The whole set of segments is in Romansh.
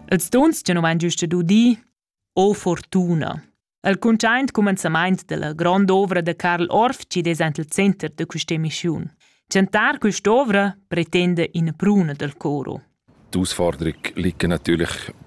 Els dons che nu vain giüst udì, o fortuna. El cuntschaint cumenzamaint della grand'ovra da Karl Orfcied es ant il center da quist'emischiun. Chantar quest'ovra pretenda ina pruna dal coro. Die Ausforderung liegt natürlich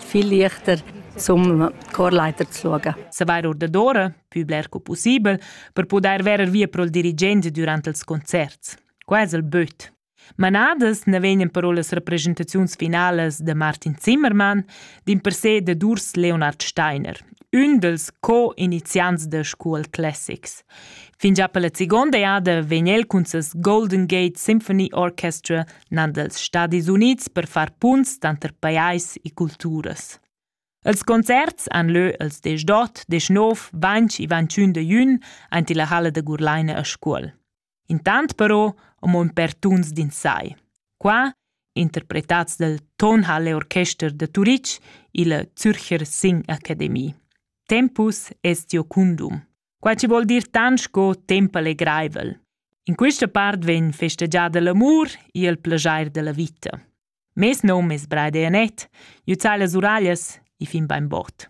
viel leichter zum Chorleiter zu schauen. Se var ordadora, più bler co possibel, per poder verer via pro il dirigente durante els concerts. Qua es il böt. Manadas ne vegnan però las representaziuns finales de Martin Zimmermann, din per se de Durs Leonard Steiner, ün dels co-iniziants de School Classics. Fin già per la seconda jada vegn el cun ses Golden Gate Symphony Orchestra nan dals Stadis Unids per far punts tanter pajais e culturas. Els concerts han lö els desch d'ot, desch nov, ventg e ventschün de jün aint illa halla da Gurlaina a Scuol. Intant però amo ün per tuns d'insai. Qua, interpretats dal Tonhalle Orchester de Turitg illa Zürcher Sing Academie. Tempus est Jocundum. Quai chi vuol dir tant sco temp allegraivel. In quista part vegn festegiada l'amur e il plajair da la vita. Mes nom es Braide Anet, jö zai las uraglias e fin bainbod.